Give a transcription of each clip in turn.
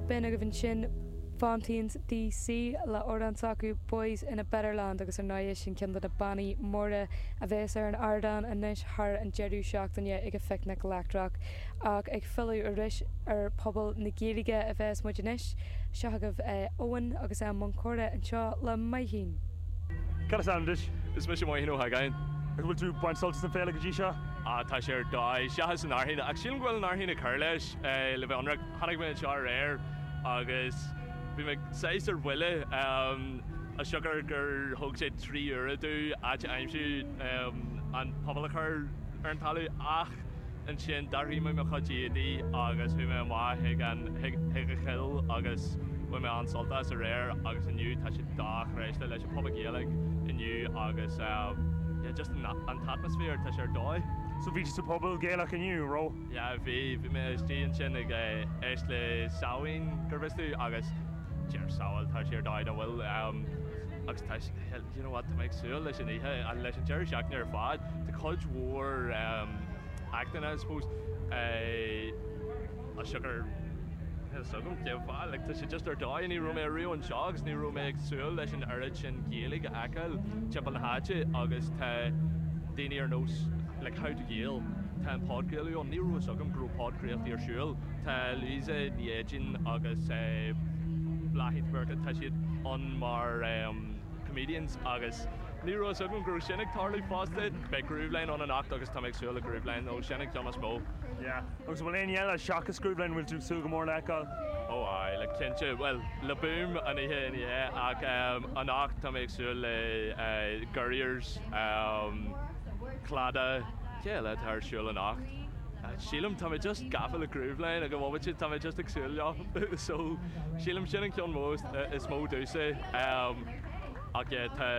B'in agaibh ansin Fontaines D.C. le amhrán s'acu Boys in a Better Land agus ar ndóighe sin ceann de na bannaí móra a bheas ar an ardán anois thar an deireadh seachtaine ag an Phicnic Leictreach. Ach ag filleadh arís ar Puball na Gaeilge a bheas muid anois. Seo chugaibh Eoin agus é i mbun comhrá anseo le Maithín. Cad is ainm duit? Is mise Maithín Ó hÁgáin. An bhfuil tú ag baint sult as an féile go dtí seo? Ah, tá sé ar dóigh. Seachas an fhearthainn. Ach sílim go bhfuil an fhearthainn ag cur leis le bheith ionraic. Tháinig mé anseo aréir agus bhí mé saghas ar buile. As siocair gur thóg sé trí uaire dúinn áit a aimsiú an puball a chur ar an talamh. Ach ansin d'athraigh mé mo chuid éadaí agus bhí mé amuigh chuig an, chuig an cheol agus bhain mé an-sult as aréir agus inniu tá sé dochreidte leis an. Puball Gaeilge inniu agus yeah just an t-atmaisféar tá sé ar dóigh. So bhí tú sa phuball Gaelach inniu, an raibh? Yeah bhí, bhí mé istigh ansin ag éisteacht le Samhain go bhfios tú agus deir Samhail tá sé ar dóigh nach bhfuil agus tá sé, do you know what tá mé ag súil leis an oíche, leis an deireadh seachtaine ar fad, tá cuid mhór actanna I suppose. Ah siocair níl fhios agam cén fáth, like tá sé just ar dóigh, ní raibh mé ariamh anseo agus ní raibh mé ag súil leis an oiread sin Gaeilge a fheiceáil timpeall na háite agus tá daoine ar nós like How to Gael, tá an podchraoladh ann, ní raibh fhios agam go raibh podchraoltaí ar siúl, tá Louisa Ní Éideáin agus eh Bláithín de Burca, tá siad ann mar em comedians agus ní raibh fhios agam go raibh sin ag tarlú fosta, beidh Grooveline ann anocht agus tá mé ag súil le Grooveline nó sin an ceann is mó. Yeah. Agus an bhfuil éinne eile seachas Grooveline a bhfuil tú ag súil go mór le fheiceáil? Ó aye, like cinnte, bhuel, Le Boom an oíche ina dhiaidh, ach ehm, anocht tá mé ag súil le eh Gurriers, ehm Claddagh, cé eile atá ar siúl anocht? Eh sílim, tá mé just gafa le Grooveline ag an bhomaite, tá mé just ag súil leo, so sílim sin an ceann mó eh is mó domhsa, ehm ach yeah tá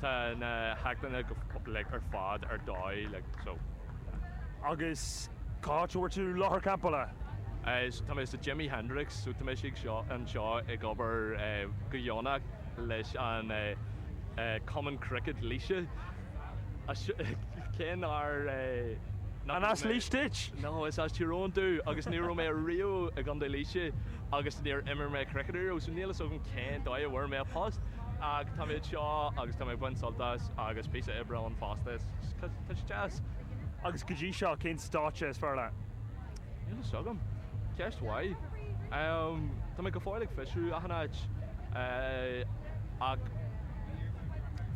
tá na hactanna go like ar fad ar dóigh like so. Agus cá háit a bhfuair tú láthair campála? Tá mé sa Jimi Hendrix, so tá mé istigh anseo ag obair go dheonach leis an Cumann Cricket Laoise. Cén áit? An as Laois duit? No, is as Tír Eoghain domh agus ní raibh mé riamh i gContae Laoise agus níor imir mé cricket riamh, so níl fhios agam cén dóigh a bhfuair mé an post ach tá mé anseo agus tá mé ag baint sult as agus píosa oibre ann fosta. Teastas? Agus go dtí seo, cén stáitse is fearr leat? Níl fhios agam. Ceist mhaith. Tá mé go fóill ag fiosrú achan áit ach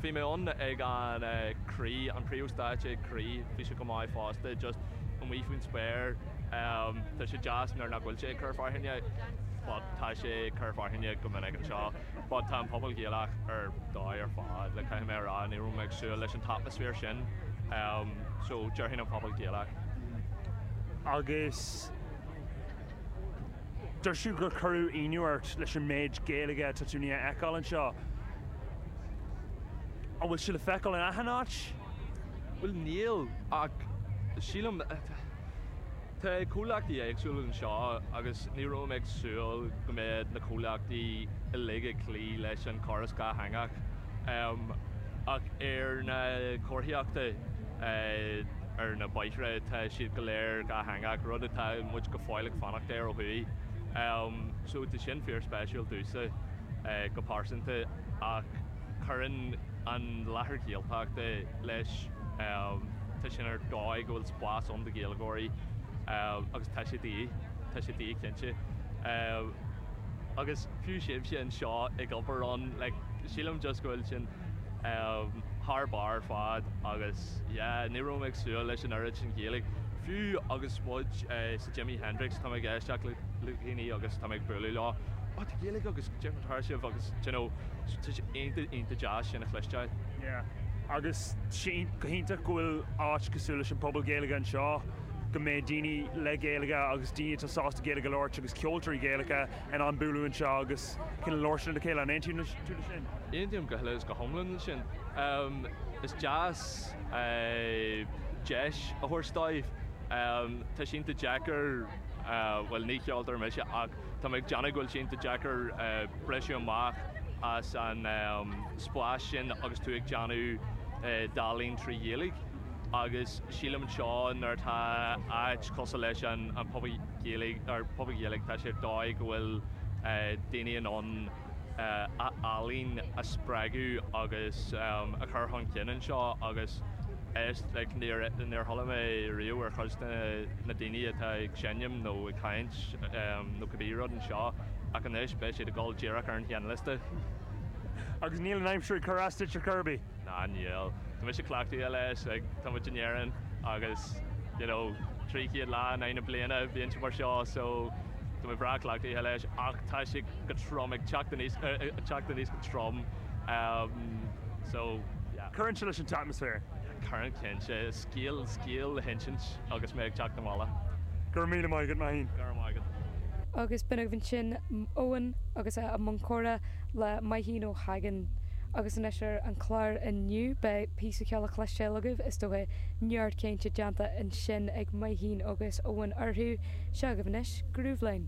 bhí mé ann ag an Croí, an príomhstáitse ag Croí, bhí sé go maith fosta, just amuigh faoin spéir. Tá sé deas nuair nach bhfuil sé ag cur fearthainne but tá sé ag cur fearthainne go minic anseo. but tá an Puball Gaelach ar dóigh ar fad, like caithfidh mé a rá, ní raibh mé ag súil leis an t-atmaisféar sin, em so déarfainn an Puball Gaelach. Agus dúirt tú gur cuireadh ionadh ort leis an méid Gaeilge atá tú a fheiceáil anseo. An bhfuil sí le feiceáil in achan áit? Bhuel níl, ach sílim, Tá comhlachtaí éagsúla anseo agus ní raibh mé ag súil go mbeadh na comhlachtaí uilig ag cloí leis an chóras dátheangach. Ach ar na comharthaíochtaí ar na bóithre tá siad go léir dátheangach, rud atá muid go fóill ag fanacht air ó thuaidh. So tá sin fíorspéisiúil domhsa go pearsanta ach cuireann an láthair Ghaeltachta leis. Tá sin ar dóigh go bhfuil spás ann do Ghaeilgeoirí agus tá sé de dhíth, tá sé de dhíth cinnte. Agus fiú sibhse anseo ag obair ann, like, sílim just go bhfuil sin thar barr ar fad agus yeah, ní raibh mé ag súil leis an oiread sin Gaeilge. Fiú agus muid sa Jimi Hendrix tá mé ag éisteacht le daoine agus tá mé ag bualadh le, oh, tá Gaeilge agaibh, déarfá, tá sibh agus, d'you know, tá sé iontach, iontach deas sin a chloisteáil. Yeah. agus go hiontach go bhfuil áit cosúil leis an Puball Gaeilge anseo, go mbeidh daoine le Gaeilge agus daoine atá sásta Gaeilge a labhairt agus ceoltóirí Gaelacha in ann bualadh anseo agus in ann labhairt lena chéile. An aontaíonn tú le sin? Aontaím go huile is go hiomlán le sin. Is deas deis a thabhairt dóibh. Tá sé iontach deacair, bhuel ní ceoltóir mise ach Tá mé ag déanamh go bhfuil sé iontach deacair briseadh amach as an spás sin agus tú ag déanamh d'ealaín trí Ghaeilge agus sílim anseo nuair atá áit cosúil leis an Phuball Ghaeilge tá sé ar dóigh go bhfuil daoine in ann a ealaín a spreagadh agus a chur chun cinn anseo agus is like níor níor chuala mé riamh ar chuid de na daoine atá ag seinm nó ag caint nó cibé rud anseo ach anois beidh siad ag dul díreach ar an tseinnliosta agus níl an aimsir ag cur as duit a Kirby. Ná níl. Tá mise cleachtaithe leis, like, tá muid in Éirinn agus you know trí chéad lá in aghaidh na bliana, bíonn sé mar seo so tá mé breá cleachtaithe leis ach tá sé go trom, ag teacht anuas, ag teacht anuas go trom, so yeah. Cuireann sé leis an t-atmaisféar. Cuireann cinnte. Beidh scéal le hinsint agus mé ag teacht abhaile. Go raibh míle maith agat, Maithín. Go raibh maith agat. Agus b'in agaibh ansin Eoin agus a bhí i mbun comhrá le Maithín Ó hEidhin. Agus anois ar an chlár inniu, beidh píosa ceoil le cloisteáil agaibh, is dócha, neart cainte déanta ansin ag Maithín agus Eoin orthu. Seo agaibh anois, Grooveline.